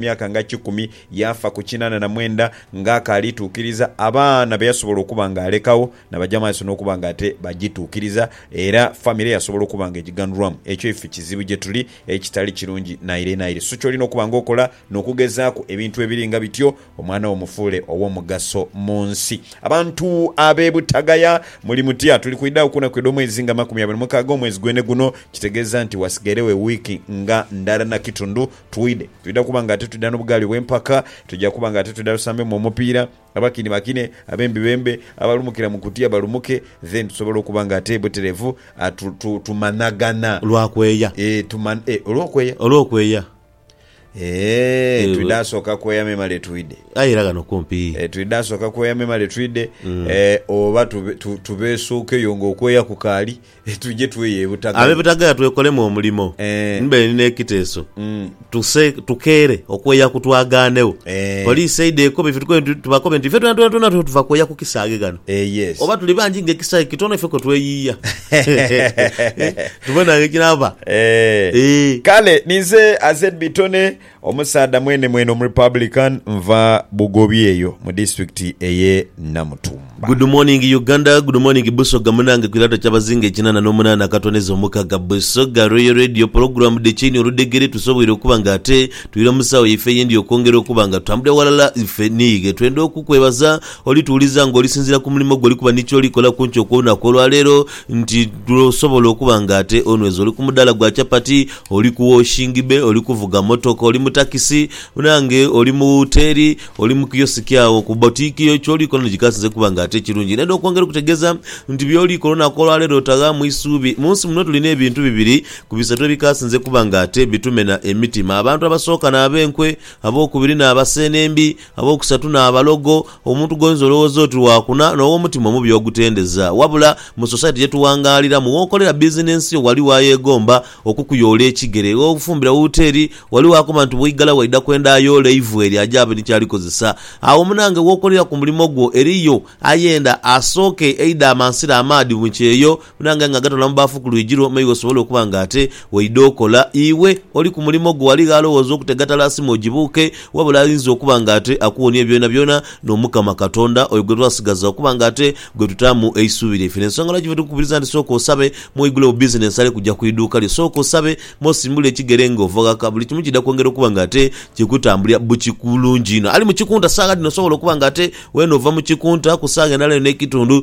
myaka nga kikumi, yaafa ku kinaana na mwenda ng'akaali tuukiriza abaana be yasobola okuba ng'alekagho nabaja maiso n'okuba nga ate bagituukiriza era famire yasobola okuba nga egiganhulwamu. Ekyo ife kizibu gye tuli ekitali kirungi naire naire. Su ky'olina okuba ng'okola n'okugezaaku ebintu ebiri nga bityo omwana wo omufuule ow'omugaso mu nsi? Abantu ab'e Butagaya muli mutya? Tuli kwidhagho ku naku edh'omwezi nga makumi abiri na mukaaga omwezi gwene guno, kitegeeza nti wasigairegho ewiiki nga ndala na kitundhu Twidhe, twidha kuba ng'ate twidha n'obugaali obw'empaka. Twidha kuba ng'ate twidha tusambemu omupiira. Abakini bakine, abembi bembe, abalumukira mu kutiya balumuke. Then tusobole okuba ng'ate buterevu, tu, tu, tumanhagana. Lwa kweya. Eeh, tuman, eeh, olw'okweya? Olw'okweya. Eeh, Eeh, twidha sooka kweya memale twidhe. Aye era ghano kumpi. Eeh, twidha sooka kweya memale twidhe. Eeh, oba tube, tu, tubeesuukeyo ng'okweya kukaali. Tuje tweye e Butagaya. Ab'e Butagaya twekolemu omulimo. Eeh. Ni bwendi n'ekiteeso Mm. tuse tukeere okweya ku twagaanegho. Eeh. Poliisi eidhe ekobe ife tukobe nti, tubakobe nti ife twena twena twena tuve tuva kweya ku kisaaghe ghano. Eeh yes. Oba tuli bangi nga ekisaaghe kitono ife kwe tweyiiya. Tubone agho ekinaava. Eeh. Eeh. Kale ninze Azed Bitone Omusaadha mwenemwene omurepublican nva Bugobi eyo mu district eye Namutumba. Good morning Uganda good morning Busoga munange kwilato kyabazinga ekinana nomunana akatoneza omukaga Busoga Royal Radio program the chain oludhegere tusoboire okuba nga ate twira musawo yaife eyendi okwongera okuba nga tutambulira walala ife niighe twenda okukwebaza oli tuwuliza nga olisinzira kumulimo gwe olikuba nikyoli kola kunkyo kwo lunaku olwaleero nti osobola okuba nga ate onweza oli kumudala gwa chapati Oli ku woshingi be, oli kuvuga motoka, oli mu takisi, munange oli mu woteeri, oli mu kiyosiki agho, ku bbotiiki yo, ky'oli kola ni kikasinze kuba nga ate kirungi. Ndenda okwongera okutegeeza nti by'oli kola olunaku olwaleero otaghaamu isuubi. Mu nsi muno tulina ebintu bibiri ku bisatu ebikasinze kuba nga ate bitumena emitima, abantu abasooka n'ab'enkwe, ab'okubiri n'abaseenembi, Abookusatu n'abalogo. Omuntu gw'oyinza olowooza oti wa kuna n'ow'omutima omubi ogutendeza. Wabula, mu Society ye tuwangaaliramu, w'okolera bizinensi yo ghaligho ayeegomba okukuyoola ekigere. Gh'ofumbira wooteri, ghaligho akoba nti bw'oigala waidha kwenda ayoola eivu eryo aje abe ni ky'alikozesa. Agho munange w'okolera ku mulimo gwo eriyo ayenda asooke eidha amansira amaadhi mu kyeyo, Buna nga ng'agatoola mu baafu ku lwigi lwo, maighe osobole okuba ng'ate waidha okola. Iwe oli ku mulimo gwo, ghaligho alowooza okutega tala asime ogibuuke, wabula ayinza okuba ng'ate akuwonie byonabyona n'Omukama Katonda, oyo gwe twasigaza okuba ng'ate gwe tutaamu eisubi lyaife. N'ensonga lwaki fetukukubiriza nti sooka osabe, me oigulewo bizinensi ale kuja ku iduuka lyo. Sooka osabe, me osimbule ekigere ng'ova ghaka. Buli kimu kiidha kwongera okuba ng'ate kikutambulira bulungi inho. Ali mu kikunta saagha dhino osobola okuba ng'ate weene ova mu kikunta ku saagha endala eyo n'ekitundu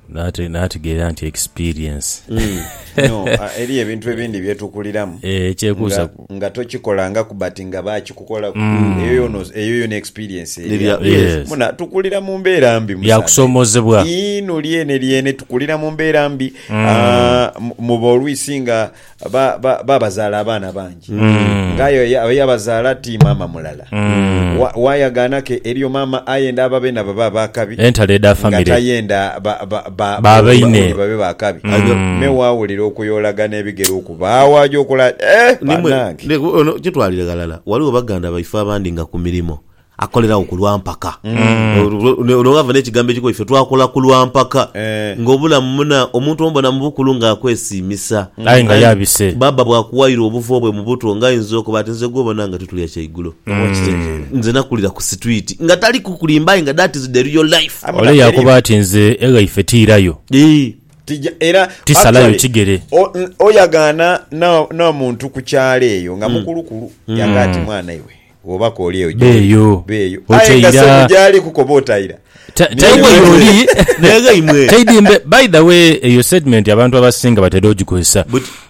Nate nategeera nti experience. No, eriyo ebintu ebindi byetukuliramu Eh, ekyekuusa nga, ku- nga tokikolangaku but nga bakikukolaku eyo yono eyo yona experience eri Erya- awo. yes. muna tukulira mu mbeera mbi musaadha. Yakusomozebwa. Ii, no lyene lyene tukulira mu mbeera mbi Ah, mu- muba olwisi nga ba, ba, babazaala abaana bangi nga aye oyo- oyo abazaala ti maama mulala Wa- wayagaana ke eriyo maama ayenda ababe nabo babe akabi Entalo edha nga family. tayenda ba- ba- ba- Ba baine. bauli babe bakabi me wawulira okuyoolagana ebigere okubaawo aja okola ati, eh, Nimwe- banange ne- ono kitwalire ghalala waliwo baganda baife abandi nga ku mirimo Akoleragho ku lwa mpaka. Ono ghava n'ekigambo ekikulu ife twakola ku lwa mpaka. Nga obulamu muna, omuntu omubona mu bukulu nga akwesiimisa. Aye nga yabise. Bbaabba bw'akuwaire obuvo bwe mu buto nga ainza okuba ati nze gw'obona nga ti tulya kyaigulo. Nze nakulira ku sitwiti. Nga tali kukulimba aye nga that is the real life. Ole yaakoba ati nze eghaife tiirayo. Eeh. Tija era. Tisalayo kigere. Oyagaana n'omuntu ku kyalo eyo nga mukulukulu, yanga ati mwana iwe. Oba koolyeyo gyoli. Aye nga sebo gyali kukoba otaira. Taidimbe by the way eyo statement abantu abasinga batera ogikozesa.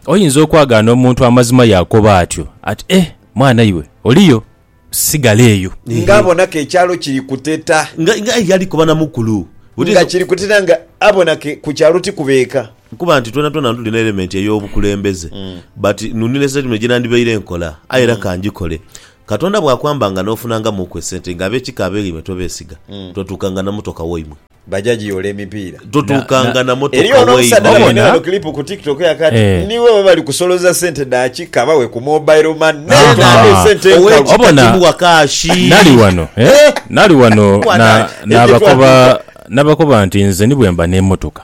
Oyinza okwagaana omuntu amazima yakoba atyo ati eh mwana iwe oliyo sigala eyo. Nga abona ke ekyalo kiri kuteta. Nga yali koba na mukulu. Nga kiri kuteta nga abona ke ku kyalo tikuba eka. Nkuba nti twena twena tulina elementi ey'obukulembeze. But nunira esente muno gyenandibaire nkola, aye era ka ngikole. Katonda bw'akwambanga n'ofunangamuuku esente, nga ab'ekika abeegh'eimwe tobeesiga, totuukanga na motoka waimwe. Baja giyoola emipiira. Totuukanga na motoka waimwe. Eriyo n'omusaadha abainhira eno clip ku tiktok yaka ati, Niwe bwe bali kusoloza sente dha kika bawe ku mobile money naye naadha esente enkalu. Obona, nali wano, nali wano nabakoba nti nze ni bwemba n'emotoka.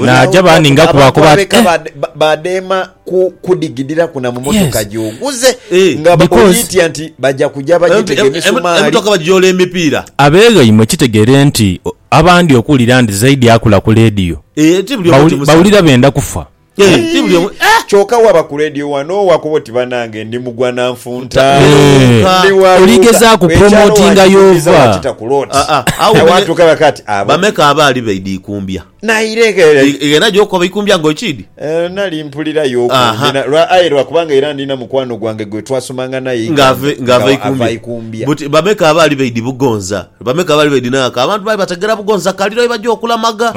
Naaja baaninga kuba Abantu kuba ati, ab'eka eh, ba, ba, badheema ku kudigidhiraku na mu motoka Yes. gy'oguze Eh, nga ba- because- ogiitya nti baja kuja bagitega Em- em- emisumaali. Emotoka bagiyoola emipiira. Abeeghaimwe kitegeere nti o- abandi okuwulira nti Zaidi akula ku leediyo Eh, ti buli omu bawuli- timusange. bawulira benda kufa. Eh, ti buli omu- eh! Kyoka waba ku leediyo wano wakoba oti banange ndi mugwa na nfa. Oligezaaku promotinga y'ova. Bameka abaali baidha ikumbya? Ghena gy'okoba ikumbya nga okiidhi? Ng'ava ikumbya. Buti bameka abaali baidhi Bugonza? Bameka abaali baidhi n'aghaka? Abantu baali bategera Bugonza kaliro ye baja okulamaga.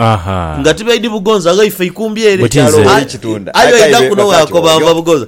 Nga tibaidhi Bugonza, ghaife ikumbya ere. Aye oidha kuno bw'akoba ava Bugonza.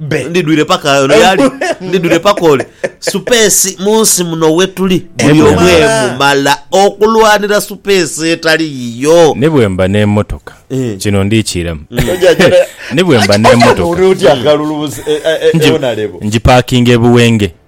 be. Ndidwire paka ono yali ndidwire paka ole. Supeesi mu nsi muno wetuli buli omu Emumala. emumala okulwanira supeesi etali yiyo. Ni bwemba n'emotoka Eh. kino ndikiiramu. Oja jana- Ni bwemba n'emotoka Ori otya akalulu bus- e- e- e- ngi- eonalebo. ngipakinga e Buwenge.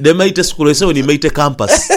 Dhe maite sukulu ese we ni maite campus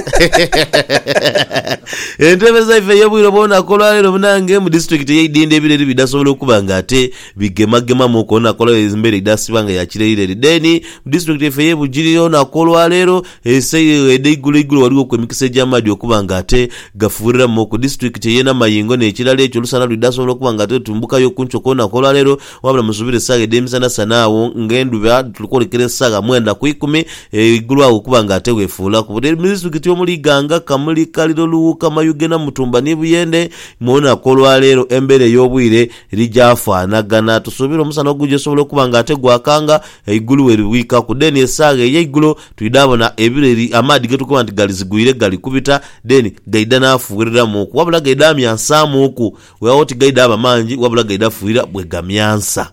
Entebe zaife ey'obwire obw'olunaku olwaleero munange mu disiturikiti eye Idindho ebiro eri bidhasobola okuba nga ate bigemagemamuku olunaku olwaleero embeera idhasiba nga ya kirerireri then mu disiturikiti yaife eye Bugiri olunaku olwaleero ese edheigulo igulo ghaligho ku emikisa egy'amaadhi okuba nga ate gafuuriramuku. Disiturikiti eye Namayingo n'ekirala ekyo olusana lwidhasobola okuba nga ate lutumbukayo ku nkyo kw'olunaku olwaleero Wabula musubire esagha edhemisana sana agho nga endhuba tuli kwolekera esagha mwenda ku ikumi eigulu agho okuba nga ate wefuulaku. Buli mudisitukiti omuli Iganga, Kamuli, Kaliro, Luwuuka, Mayuge, Namutumba ni Buyende mwona ku olwaleero embeera ey'obwire eri gyafanagana. Tusuubira omusana ogugya osobola okuba nga ate gwakanga eigulu weribwikaku deni esagha eyeigulo twidhabona ebireri amaadhi getukoba nti galizigwire galikubita deni gaidha nafuwereramuuku wabula gaidha amyansamuuku Weewaawo tigaidha ba mangi, wabula gaidha fuira bwe gamyansa.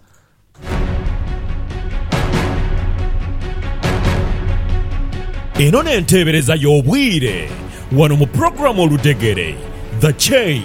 Eno n'enteebereza y'obwire wano mu pulogulaamu Oludhegere, The Chain.